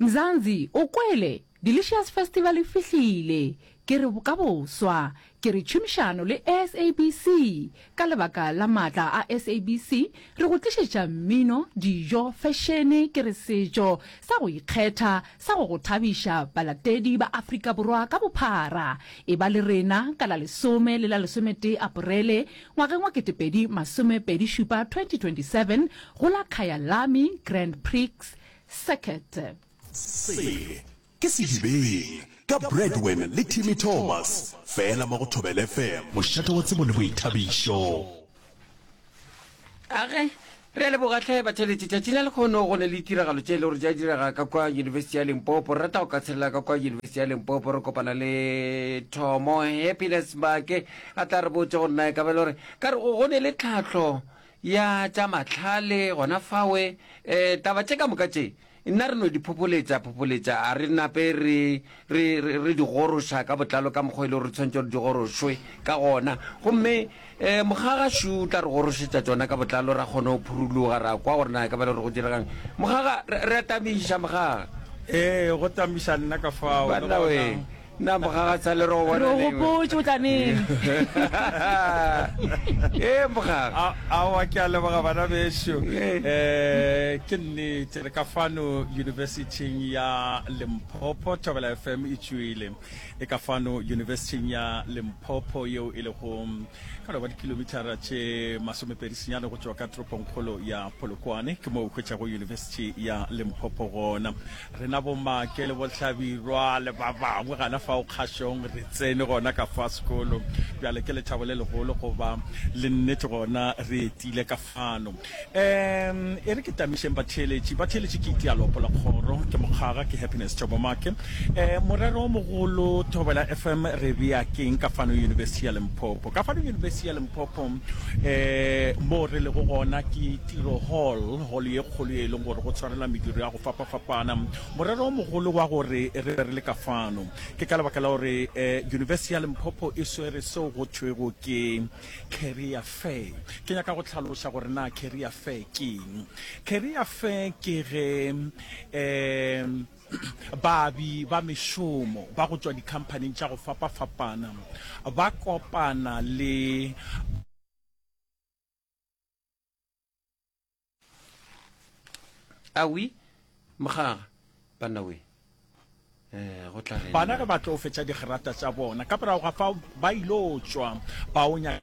Mzansi, o kwele? Delicious Festival e fihlile, ke re ka boswa ke re tšhomišano le SABC. Ka lebaka la maatla a SABC re go tlišetša mmino, dijo, fešene, ke re setšo sa go ikgetha sa go go thabiša balatedi ba Afrika Borwa ka bophara. E ba le rena ka la lesome le la lesometee Aparele Ngwageng wa ketepedi masome pedi šupa, 2027, go la Kyalami Grand Prix Circuit. Se ke Sedibeng ka Bradwen le Timmy Thomas fela mo go Thobela FM. Mošate wa tsebo le boithabišo. Ka ge Re a leboga hle batšweletši. Tšatši la lekgono go na le ditiragalo tše e le gore di a direga ka kwa Yunibesithi ya Limpopo. Re rata go ka tshelela ka kwa Yunibesithi ya Limpopo re kopana le Thomo Happiness Mbake a tla re botša gore na e ka ba e le gore ka re go ne le tlhahlo ya tša mahlale gona fawe um taba tše ka moka tše Nna re no di phopholetša, phopholetša, a re nape re, re, re, re di goroša ka botlalo ka mokgwa e lego re tshwanetše gore di gorošwe ka gona. Gomme e, Mokgaga Shu o tla re gorošetša tšona ka botlalo, ra kgona go phuruloga, ra kwa gore na e ka ba e le gore go diregang. Mokgaga, re, re a tamiša, Mokgaga. Ee, go tamiša nna ka fao, le Banna gona. wee. Na Mokgagatsha le re go bona neng? Re go gopotše o tla neng. Ee, Mokgaga. Aowa, ke a leboga bana bešo. Ke nnete le ka fano Yunibesithing ya Limpopo, Thobela FM e tšwele e ka fano Yunibesithing ya Limpopo yeo e lego ka loba dikilomithara tše masomepedi senyane go tšwa ka toropongkgolo ya Polokwane. Ke moo o hwetšago Yunibesithi ya Limpopo gona. Rena bo-Make le bo-Hlabirwa le ba bangwe gana fao kgašong re tsene gona ka fa sekolo. Bjale ke lethabo le legolo go ba le nnete gona re etile ka fano. Um, e re ke tamišeng batheeletši. Batheeletši ke Itia Lopo la Kgoro, ke Mokgaga, ke Happiness Jobo Make. Um, morero o mogolo, Thobela FM re bea keng ka fano Yunibesithi ya Limpopo? Ka fano Yunibesithi ya Limpopo, um, moo re lego gona ke Tiro Hall, holo ye kgolo ye e leng gore go tshwarelwa mediro ya fapafapana. Morero o mogolo wa gore re be re le ka fano ke ka lebaka la gore um yunibesi ya Limpopo e swere seo go thwego ke Career Fair. Ke nyaka go tlhaloša gore na Career Fair ke eng. Career Fair ke ge um baabi ba mešomo ba go tšwa dikhamphaning tša go fapafapana ba kopana le awi mokgaga banna we eh, go tla bana ge ba tlo fetša digerata tša bona ka morago ga fa ba ilo tšwa baonya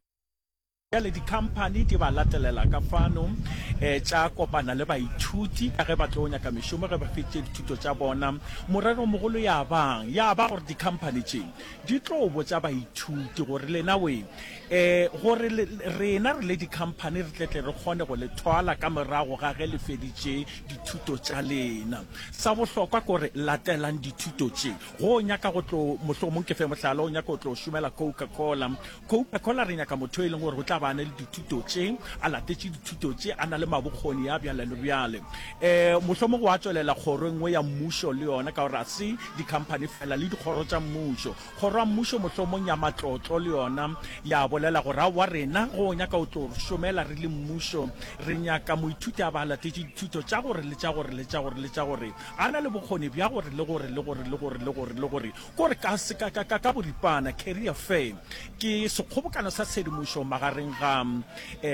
le dikhamphani di ba latelela ka fano um tša kopana le baithuti ka ge ba tlo nyaka mešomo ge ba fetše dithuto tša bona morero mogolo ya bang ya ba gore dikhamphani tše di tlo botsa baithuti gore lena we Ee, gore le, rena re le dikhamphani re tletle re kgone go le thwala ka morago ga ge le feditše dithuto tša lena. Sa bohlokwa ke gore latelang dithuto tše. Go o nyaka go tlo, mohlomong ke fe mohlala, o nyaka go tlo šomela Coca-Cola. Coca-Cola re nyaka motho yo e leng gore o tla ba a na le dithuto tše, a latetše dithuto tše, a na le mabokgoni ya bjale le bjale. Ee, mohlomong wa tšwelela kgoro e nngwe ya mmušo le yona, ka gore ga se dikhamphani feela, le dikgoro tša mmušo. Kgoro ya Mmušo mohlomong ya matlotlo le yona ya bolela gore, Aowa, rena go nyaka o tlo re šomela re le mmušo. Re nyaka moithuti a ba a latetše dithuto tša gore le tša gore le tša gore le tša gore, a na le bokgoni bja gore le gore le gore le gore le gore le gore. Kore ka, ka, ka, ka, ka boripana, career fair ke sekgobokano sa tshedimošo magareng ga um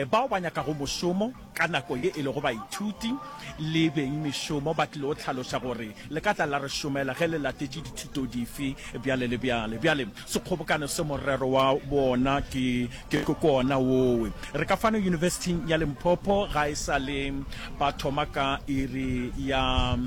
bao ba nyakago mošomo, Ka nako ye e lego baithuti le beng mešomo ba tlile go hlaloša gore le ka tla la re šomela ge le latetše dithuto dife bjale le bjale. Bjale sekgobokano se morero wa wona ke ke kona wowe. Re ka fano Yunibesithing ya Limpopo ga e sa le ba thoma ka iri ya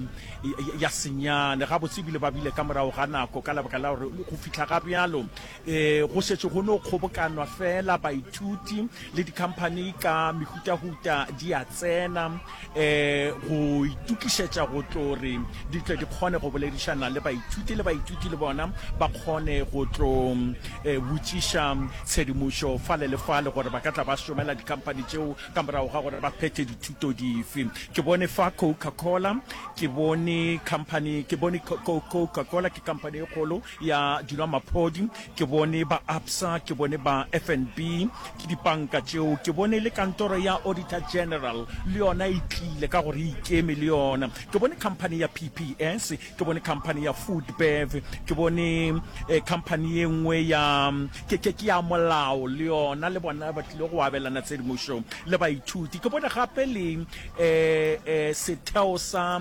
ya senyane gabotse ebile ba bile ka morago ga nako ka lebaka la gore go fihla ga bjalo E, go šetše go no kgobokanwa fela baithuti le dikhamphani ka mehutahuta di a tsena e, go itukišetša go tlo re di tle di kgone go boledišana le baithuti le baithuti le bona ba kgone go tlo e, botšiša tshedimošo fale le fale gore ba ka tla ba šomela dikhamphani tšeo ka morago ga gore ba phethe dithuto dife ke bone fa coca cola ke bone company ke bone coca cola ke company e kgolo ya dinwamaphodi, ke bone ba Absa, ke bone ba FNB, ke dipanka tšeo, ke bone le kantoro ya Auditor General le yona e tlile ka gore e ikeme le yona, ke bone company ya PPS, ke bone company ya Foodbev, ke bone eh, company ye nngwe ya ke, ke, ke ya molao le yona, le bona ba tlile go abelana tshedimošo le baithuti, ke bone gape le eh, eh, setheo sa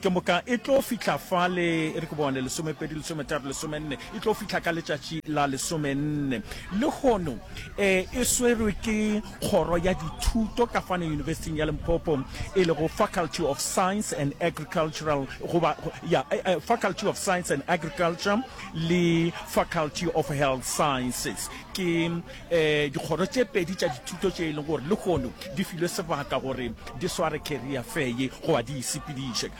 Ke moka e tlo fihla fale, e re ke bone, lesomepedi, lesometharo, lesomenne, e tlo fihla ka letšatši la lesomenne. Lehono e e swerwe ke Kgoro ya Dithuto ka fane Yunibesiting ya Limpopo, e lego Faculty of Science and Agricultural, goba, ya, Faculty of Science and Agriculture le Faculty of Health Sciences. Ke. Dikgoro tše pedi tša dithuto tše e lego gore lehono di filwe sebaka gore di sware career fair ye goba di e sepediše,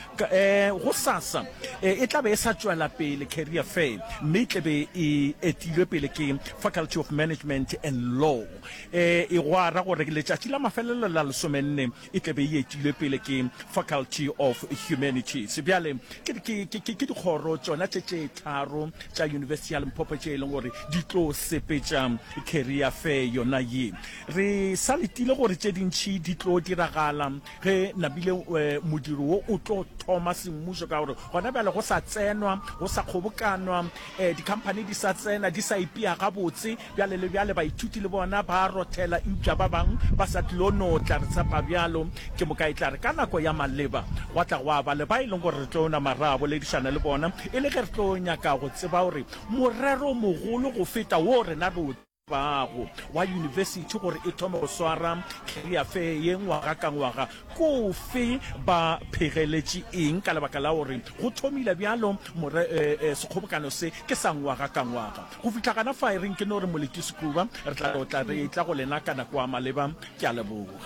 gosasa e tla be e sa tšwela pele career fair mme e tle be e etilwe pele ke Faculty of Management and Law. E gwa ra gore letšatši la mafelelo la lesomenne e tla be e etilwe pele ke Faculty of Humanities. Bjale, ke, ke, ke, ke, ke dikgoro tšona tše tše tharo tša Yunibesithi ya Limpopo tše e leng gore di tlo sepetša Career Fair yona ye. Re sa letile gore tše dintši di tlo diragala ge nabile eh, modiro wo o tlo thoma semmušo, ka gore gona bjale go sa tsenwa, go sa kgobokanwa, eh, dikhamphani di sa tsena, di sa ipea gabotse, Bjale le bjale baithuti le bona ba a rothela, eupša ba bangwe ba sa tlilo no tla re tshepa bjalo. Ke moka e tla re ka nako ya maleba gwa tla gwa ba le ba e leng gore re tlo nama ra boledišana le bona e le ge re tlo nyaka go tseba gore morero o mogolo go feta woo rena re o tsebago wa yunibesithi gore e thome go swara career fair ye ngwaga ka ngwaga ke ofe, ba phegeletše eng ka lebaka la gore go thomile bjalo more, eh, eh, sekgobokano se ke sa ngwaga ka ngwaga. Go fihla gana fa e reng ke no re Moleti Sekuba, re tla tlotla re etla go lena ka nako a maleba. Ke a leboga.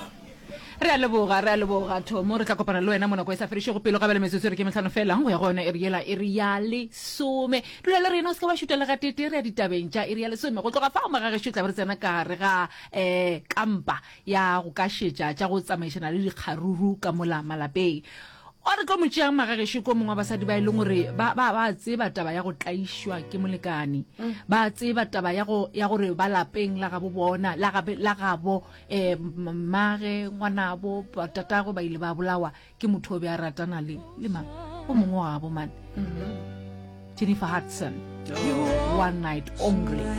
Re a leboga, re a leboga, Tomo. Re tla kopana le wena mo nako e sa fedišego pelo ga bjale metsotso e re ke mehlano feela go ya go yona iri yela iri ya lesome. Dula le rena, o se ke wa šutwa le gatee-tee, re ya ditabeng tša iri ya lesome. Go tloga fao magagešo e tla be re tsena ka gare ga um kampa ya go kašetša tša go tsamaišana le dikgaruru ka mola malapeng. O re tlo mo tšeang magagešo ko mongwe wa basadi ba e leng gore ba ba ba tseba taba ya go tlaišwa ke molekane ba tseba taba ya go ya gore ba lapeng la gabo bona la gabe la gabo um mmage ngwanabo ba- tatagwe ba ile ba bolawa ke motho o be a ratana le le mang o mongwe wa gabo mane jennifer hudson one night only